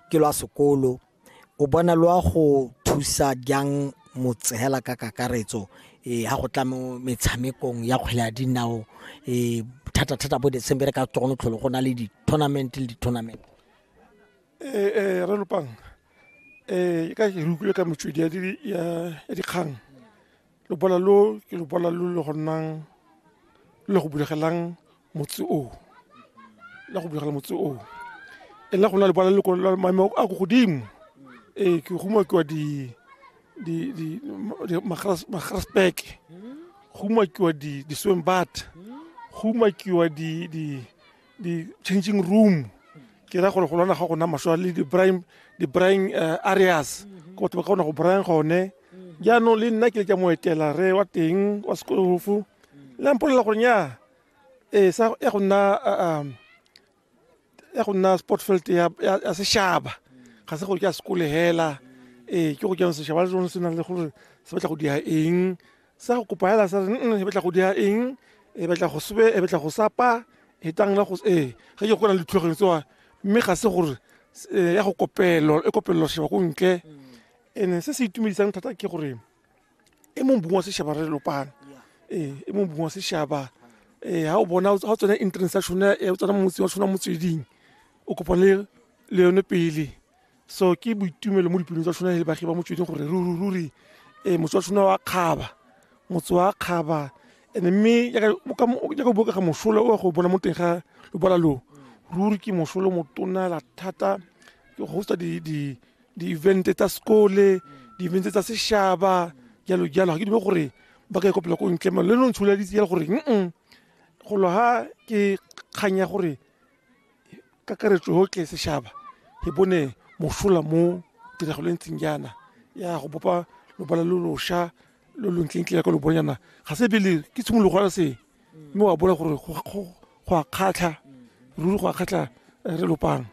ke lwa sekolo o bona lwa go thusa jang motsehela ka kakaretso um ha go tla mo metshamekong ya kgwele ya dinao um thata-thata bo december ka togone tlholo go na le di-tournament le di-tournament um re lopang um ka ke re utlwile ka metswedi ya dikgang lobola lo ke lobola lo le go nnang le go bulegelang motse oo la go begela motse oo e la go na le bala leloko la maemo a ko godimo ee ke go umakiwa di di di magrasbeke go umakiwa di di swim bat go umakiwa di di di changing room ke ra gore go lwana ga gona maswa le di-brime di-brime uh, areas ko batho ba kgona go brime gone jaanong le nna ke le ka moetela re wa teng wa sekolofu la mpolelela gore nya ee sa ya go nna ah, um, ya go nna sport field ya ya- ya sešaba ga se gore ke a sekole hela ee ke go jang sešaba le sone se nang le gore se batla go dia eng sa go kopa hela sa re "Mm, mm, e batla go dia eng e batla go sebe e batla go sapa e tang la go ee ge ke go na le dithulaganyo tsewa mme ga se gore s- eh, ya go kopelo e kopelelo šeba ko ntle ene se se itumedisang thata ke gore e mong bong wa sešaba re lopana ee e mong bong wa sešaba ee ga o bona ga o tsena entrance ya tshone o tsena motse wa tshona motsweding o kopane le yone pele so ke boitumelo mo dipelong tsa tshona le bagi ba motsweding gore ruri ee motse wa tshona wa kgaba motse wa kgaba ene mme jaaka o bokega mosola o ya go bona mo teng ga lobala loo ruri ke mosolo motona la thata ke go hosta di di-evente tsa sekole di-evente tsa sešaba jalo jalo ga ke dume gore ba ka ikopela ko ntle le no ntsholeditse jalo gore mm go lo ha ke kgang ya gore kakaretso yotlhe sešaba e bone mosola mo tiragalong ntseng jaana ya go bopa lobala lo losha lo lo ntleng ya ka lo bonyana ga se pele ke tshimologo ya se mme wa bona gore go a kgatlha ruri go a kgatlha eh, re lopang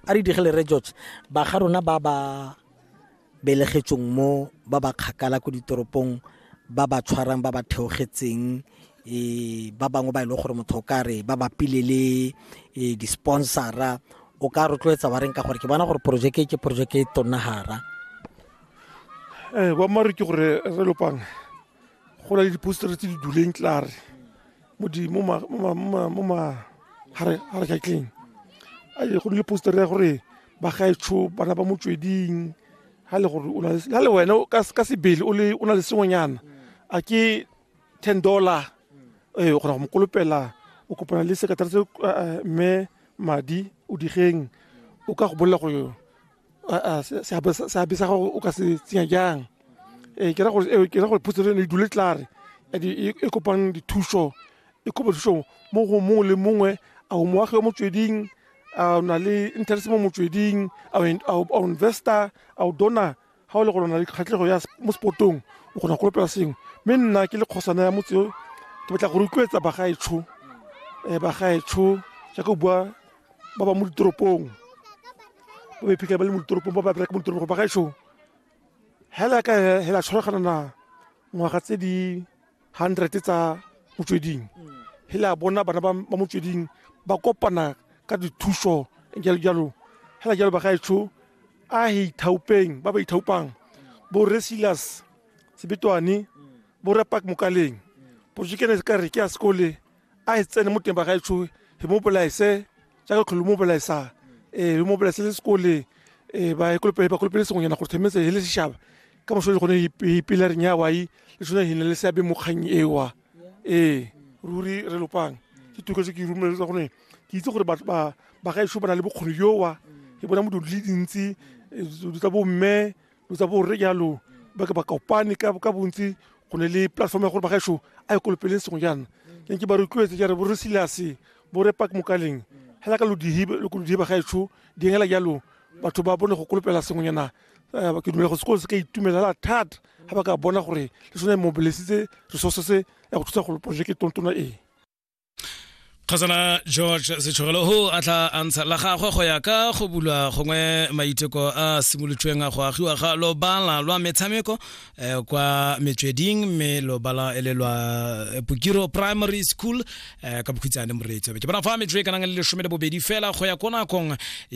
a re digele re george ba ga rona ba ba belegetsong mo ba ba kgakala ko ditoropong ba ba tshwarang ba ba theogetseng um ba bangwe ba e leng gore motho o ka re ba bapile le eh, di-sponsora o ka rotloetsa wa reng ka gore ke bona gore porojeke ke porojeke e tonnagara um eh, boammaaruri ke gore re lopang go na le dipostere tse di duleng tlare mo magarekatleng go ne le postere ya gore bagaetsho bana ba motsweding ga le gore ga le wena ka sebele o na le sengwenyana a ke ten dollar ee o kgona go mo kolopela o kopana le sekatara se eh, eh, mme madi o digeng o ka go bolela gore aa se- seabe sa- seabe sa gago o ka se tsenya jang ee ke ra gore ee, ke ra gore puso eno e dule tlare and e e kopang dithuso e kopa thuso mo go mongwe le mongwe a o moagi o motsweding a o na le interest mo motsweding a o in- a o- a o investor a o dona ga o le gore o na le kgatlhego ya s- mo spotong o kgona go kolopela sengwe mme nna ke le kgosana ya motse o ke batla go rotloetsa bagaetsho um bagaetsho jaaka o bua ba ba mo ditoropong ba ba iphitlhela ba le mo ditoropong ba ba bereka mo ditoropong ba gaetsho hela ka hela tshwaragana na ngwaga tse di hundred tsa motsweding hela bona bana ba ba motsweding ba kopana ka dithuso jalo jalo hela jalo ba gaetsho a he ithaupeng ba ba ithaupang bo re silas sebetwane bo re pak mokaleng porojekene ka re ke ya sekole a e tsene mo teng ba gaetsho e mo bolaese jaaka tlholo mo bolaesa ee mo bolaese le sekole ee ba ekolopele ba kolopele sengwenyana gore themetse e le sešaba ka moso le gone ipilareng ya wai le sone e ne le seabe mo kgang ewa ee ruri re lopang ke tuko se ke rumeletsa gone ke itse gore batho ba ba gaetsho ba na le bokgoni jowa ke bona modulo le dintsi di tsa bomme lo tsa borre jalo ba ke ba kopane ka ka bontsi go ne le platform ya gore bagaešo a ye kolopeleng sengwe jaana ke nke ba rotloetse jare bo re silase bo re park mokaleng hela ka lodihibe lo kolodihe bagaešo di hela jalo batho ba bone go kolopela sengwe jaana eh, ke dumela go sekolo se ka itumelela thata ga ba ka bona gore le sone mobilesitse resources ya go thusa go projeke tontona ee kgosana george setshogelo ho a tla antsha la gagwe go ya ka go bulwa gongwe maiteko a simolotsweng a go agiwa ga lobala lwa metshameko eh, kwa metsweding mme lobala e le lwa eh, pokiro primary school eh, ka bokhutsane moreetsi ke bona fa metswe e kanang le lesome le bobedi fela go ya ko nakong